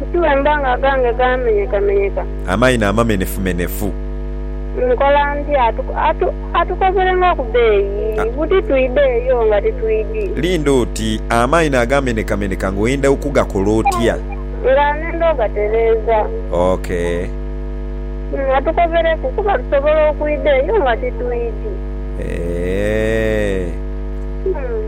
Nti bwemba nga agange gaamenyekamenyeka. Amaino amamenefumenefu. Nkola ntya? Atu, atukozere nga ku beeyi, buti twidhe eyo nga titwidhi. Linda oti, amaino agaamenekameneka nga oyenda okugakola otya? Nga nenda ogatereeza. Ok. Umm, atukozereku, kuba tusobola okwidha eyo nga titwidhi. Eeh. Umm.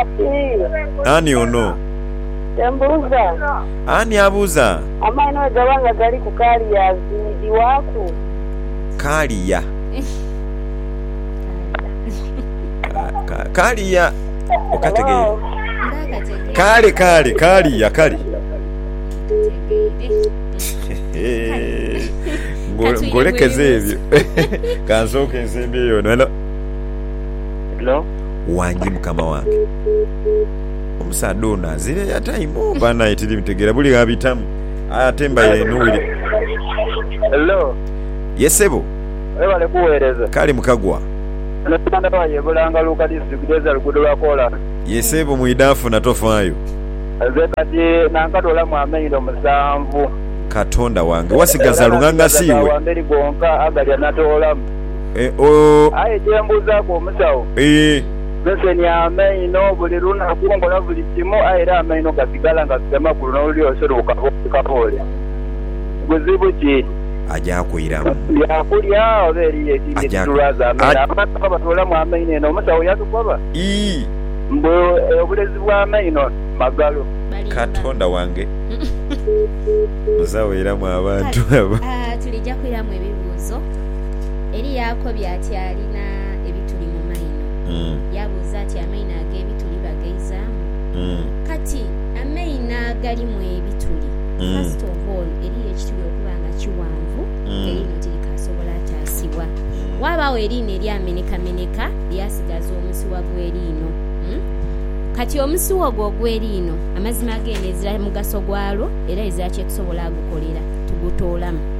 Ati, Ani ono? Kye mbuuza. Ani abuuza? Amaino bwe gaba nga gali ku kaaliya azimbibwaku? Kaaliya? Kaaliya okategeire? Kale, kale, kaaliya kale. Ngolekeze ebyo. Ka nsooke nsembyeyo wano. Halo? Hello. Wangi mukama wange. Omusaadha ono azira airtime ooh banaye tiri mutegera buli ghabitamu aye ate mbaire nowire. Hello. Ye sebo. Webale kuwereza. Kale mukagwa. Eno Uganda wire ye Bulanga Luuka district ezira luguudo lwa kolansi. Ye sebo mwidafuna tofayo. Nze kati nankadolamu amaindo musanvu. Katonda wange wasigaza lunganga siiwe. Wamberi gonka agalya natoolamu. Eeh-oh. Aye kyembuuzaaku omusawo, nsenia amaino buli lunaku, nkola buli kimu aye era amaino gasigala nga gafite makulu n'olulyo olusi luli kaboole kaboole. Buzibu ki? Aja kuiramu. Bya kulya oba eriyo ekindi ekitulwaza amaino? Abantu nga batuulamu amaino eno omusawo yatukoba? Ii. Mbu obulezi bw'amaino magalo. Katonda wange! Musawo iramu abantu abo. Haa, tulija kuiramu ebibuuzo. Eri yaakobya ati alina ebituli mu maino. Yaabuuza ati, Amaino ag'ebituli bagaizaamu? Kati, amaino agalimu ebituli, first of all, eriyo ekituli okuba nga kiwanvu nga liino tirikaasobola taasibwa. Waabagho eriino eryamenekameneka lyasigaza omusiwa gw'eriino. Kati omusiwa ogwo ogw'eriino, amazima geene ezira mugaso gwalwo era ezira kye tusobola gukolera tugutoolamu.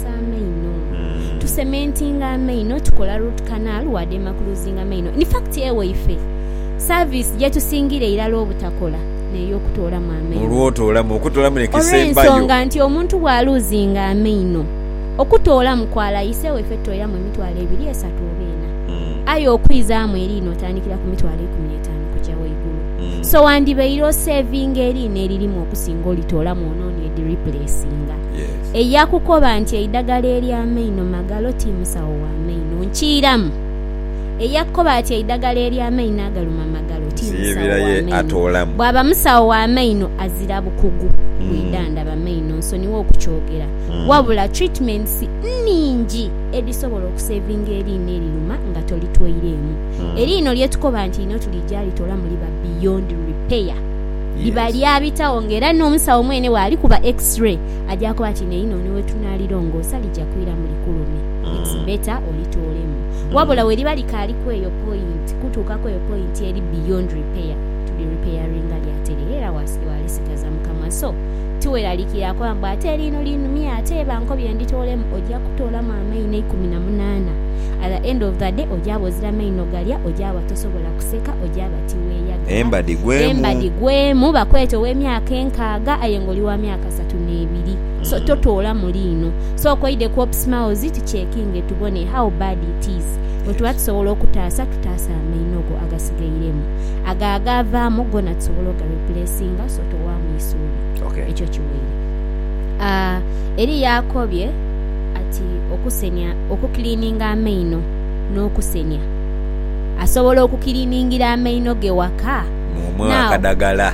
tukozesa amaino. Tu cementinga amaino, tukola root canal wa demaclusinga amaino. In fact ewaife, service gyetusingira irala obutakola n'ey'okutoolamu amaino. Olw'otoolamu, okutoolamu n'ekisembayo. Olw'ensonga nti omuntu bwa luzinga amaino, okutoolamu kwala ise ewaife tutoiramu emitwalo ebiri, esatu oba ena. Aye okwizaamu eriina otandikira ku mitwalo ikumi n'etaanu kuja waigulu. So wandibaire o savinga eriina eririmu okusinga olitoolamu ononie di replacinga. eya kukoba nti eidagala ery'amainho magalo ti musawo wa maino nkiiramu. Eya kukoba ati eidagala ery'amainho agaluma magalo ti musawo wa maino, bwaba musawo wa maino azira bukugu bwidhandhaba maino nsonigha okukyogera. Wabula treatments nnhingi edhisobola okusevinga eriino eriruma nga tolitweireemu. Eriino lye tukoba nti einho tulija litolamu liba beyond repair. Liba lyabitagho nga era n'omusawo mwene bw'alikuba X-ray, Ajaaku ati, Naye inho ni we tunaalirongoosa lija kwira mu likulumi. It's better olitoolemu. Wabula weriba likaali ku eyo point, kutuuka ku eyo point eri beyond repair, tulirepairinga lyatere era waalisigaza mu kamwa. So, tiweraliikire akoba mbu ate liino linumye ate bankobye nditoolemu. Oja kutoolamu amaino eikumi na munaana. At the end of the day ojaaba ozira maino galya, ojaaba tosobola kuseka, ojaaba tiweeyagala. Embadi gwemu. Embadi gwemu. Bakweeta ow'emyaka enkaaga aye nga oli wa myaka. kasatu nebiri so totoola muli ino so okoide ku opsmawzi tucekinge tubone how bad it is bwetuba tusobola okutaasa tutaase amaino go agasigairemu ago agaavaamu gona tusobola oga replacinga so towaamu isuubi Okay. ekyo kiweire Ah, eri yakobye ati okusenia okukilininga amaino n'okusenia asobola okukiliningira amaino ge waka Mumuwe Now, akadagala.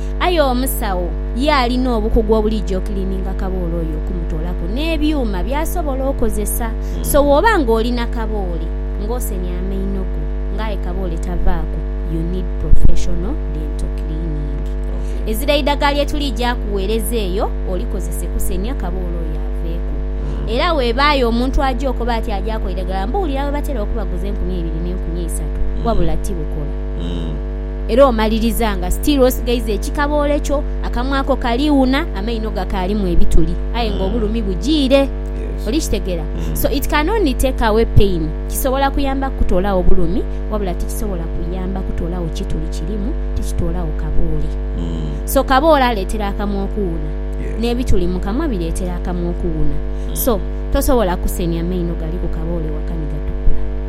Aye omusawo ye alina obukugu obuliija okiliininga kaboole oyo okumutoolaku n'ebyuma by'asobola okozesa. So bw'oba ng'oli na kaboole ng'osenye amaino go nga aye kaboole tavaaku, you need professional dental cleaning. Ezira eidagala lye tuliija akugheereza eyo olikozese kusenia kaboole oyo aveeku. Era webaayo omuntu aja okoba ati aja akola eidagala mbu wulira bwe batera okubaguza enkumi eibiri n'enkumi eisatu, wabula tibukola. era omaliriza nga still osigaiza ekikaboole kyo, akamwa ko kali wuna, amaino gakaalimu ebituli aye nga obulumi bujiire. Oli kitegera? So it can only take away pain. Kisobola kuyamba kukutoolagho bulumi wabula tikisobola kuyamba kutoolagho kituli kirimu, tikitoolagho kaboole. So kaboole aleetera akamwa okuwuna, n'ebituli mu kamwa bireetera akamwa okuwuna. So tosobola kusenhya maino gali ku kaboole waka ni gatukula.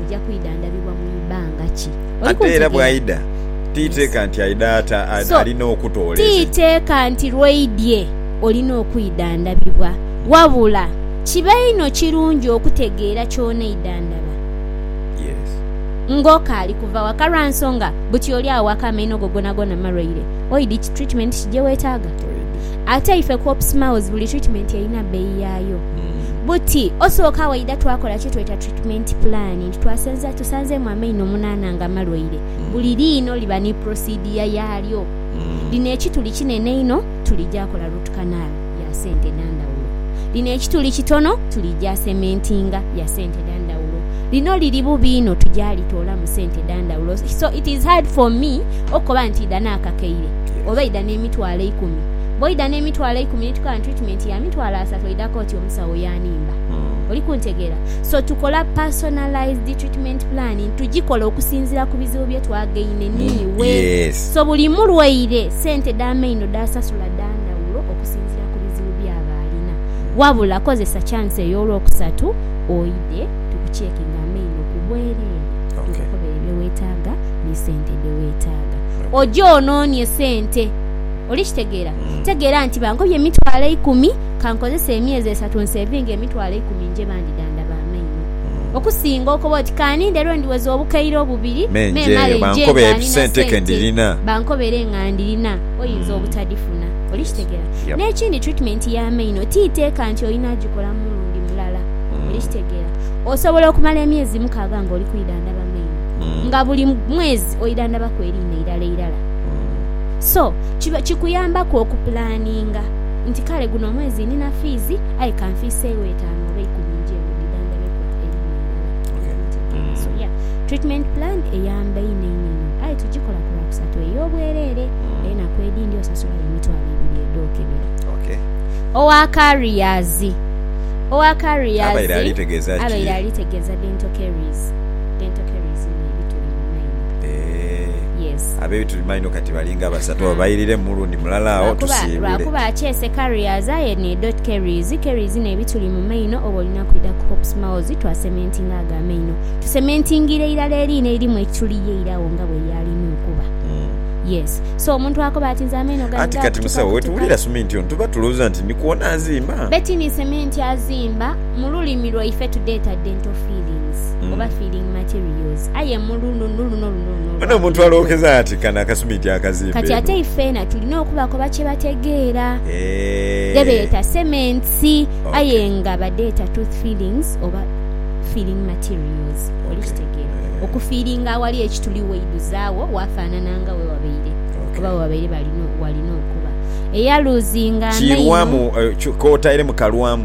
oja kwidhandhabibwa mu ibanga ki. Oli kuntegeera? Ate era bwaidha, ti iteeka nti aidha ata, alina okutoola eze. Ti iteeka nti lw'oidhye olina okwidhandhabibwa, wabula kiba inho kirungi okutegeera ky'oneidhandhaba ng'okaali kuva waka lwa nsonga buti oli awaka amaino go gonagona malwaire, oidhi ki treatment ki gye wetaaga. Ate ife ku Ops Maoz buli treatment erina bbeeyi yaayo. Buti osooka waidha twakola kye tweta treatment plan nti twasenza tusanzeemu amaino omunaana nga malwaire, buli liino liba ni procedure yaalyo. Lino ekituli kinene inho tuligya kola root canal ya ssente dha ndhawulo. Lino ekituli kitono tuligya cementinga ya ssente dha ndhawulo. Lino liri bubi inho tugya litoolamu ssente dha ndhawulo. So it is hard for me okukoba nti idha naakakaire. oba eidha n'emitwalo eikumi. Bw'oidha n'emitwalo eikumi ni tukaaba ni twitimeenti ya mitwalo asatu oidha kooti omusawo yaanimba. Oli kuntegeera? So tukola personalised treatment plan, tugikola okusinziira ku bizibu bye twagaine n'iwe. So buli mulwaire sente dh'amaino dh'asasula dha ndhawulo okusinziira ku bizibu byaba alina. Wabula kozesa chance eyo olwokusatu oidhe tukucheckinge amaino ku bwereere tukukobere bye weetaaga ni sente dhe weetaaga. Oje ononie sente. Oli kitegeera? Tegeera nti bangobye emitwalo eikumi, ka nkozese emyezi esatu nseevinge emitwalo eikumi nje bandidhandaba amaino. Okusinga okoba oti ka ninde lwe ndiweza obukaire obubiri me male nje nga ndina sente bankobere nga ndirina, oyinza obutadifuna. Oli kitegeera? N'ekindi treatment y'amaino ti iteeka nti olina agikola mulundi mulala. Oli kitegeera? Osobola okumala emyezi mukaaga nga oli kwidhandhaba maino. nga buli mwezi oidhandhabaku eriina irala irala. So, kiba kikuyambaku okupulaninga nti kale guno omwezi nina fiizi aye ka nfiiseegho etaanu oba eikumi njembe dhidhandhabeku eriina irala. Treatment plan eyamba inho inho inho aye tugikola ku Lwakusatu ey'obwereere. Enaku edhindi osasulayo emitwalo ebiri edh'okebera. Owa Carriers. Owa Carriers abaire ali tegeeza Dental Carries. Dentokeries ni ebituli mu maino. Eeh. Yes. Ab'ebituli mu maino kati balinga basatu. Oba bayiriremu mulundi mulala agho Lwakuba, tusiibule. lwakuba akyese carriers aye ni dotkeries. Keries ni ebituli mu maino oba olina kwidha ku Hope Smiles twasementinga ago amaino. Tusementingiire irala eriina eririmu ekituli ye ira agho nga bweyaalina okuba. Yes. So omuntu akoba ati nze amaino gange Anti kati gaakutuka musawo kutuka. wetuwulira suminti ono tuba tulowooza nti ni kwona azimba? Betini sementi azimba, mu lulimi lwaife tudheeta dental filling. products oba filling materials aye mu luno no luno luno luno Ono omuntu olwakuna kwe. alookeza ati kano akasuminti akazimba Kati eno. ate ifeena tulina okubakoba kye bategeera. Eehh. Dhebeeta cements Okay. aye nga badheeta tooth fillings oba filling materials. Oli Okay. kitegeera? Eehh. Okufiilinga awali ekituli waidhuzaawo waafaanana nga we wabaire Okay. oba we babaire balina walina okuba. Eyaluuzinga amaino. Kiirwamu, eh, kyo- k'otaire mu kalwamu.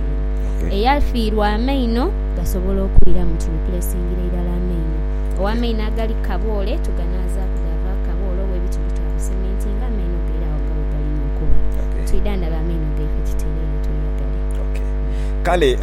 Eyafiirwa amaino gasobola okwira mu kino kule esingira irala amaino. Ow'amaino agali ku kaboole tuganaazaaku gaavaaku kaboole oba ebiti byo twabisementinga, amaino gaire agho gawe galimu okuba. Twidhandhabe amaino gaife tutereere tweyagale. Kale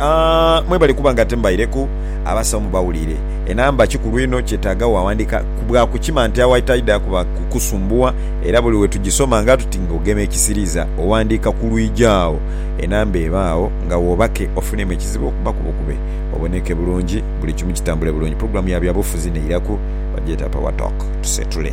mwebale kuba nga timbaireku abasawo mubawulire. Enamba kikulu inho kyetaaga wawandiika bwa kukima nti awa etaidha kuba kukusumbuwa era buli we tugisoma nga tuti nga ogema ekisiriiza owandiika ku lwigi agho. enamba eba agho nga wobake ofunemu ekizibu okuba ku bukube oboneke bulungi buli kimu kitambule bulungi pulogulamu ya byabufuzi neiraku bagyeta power talk tusetule.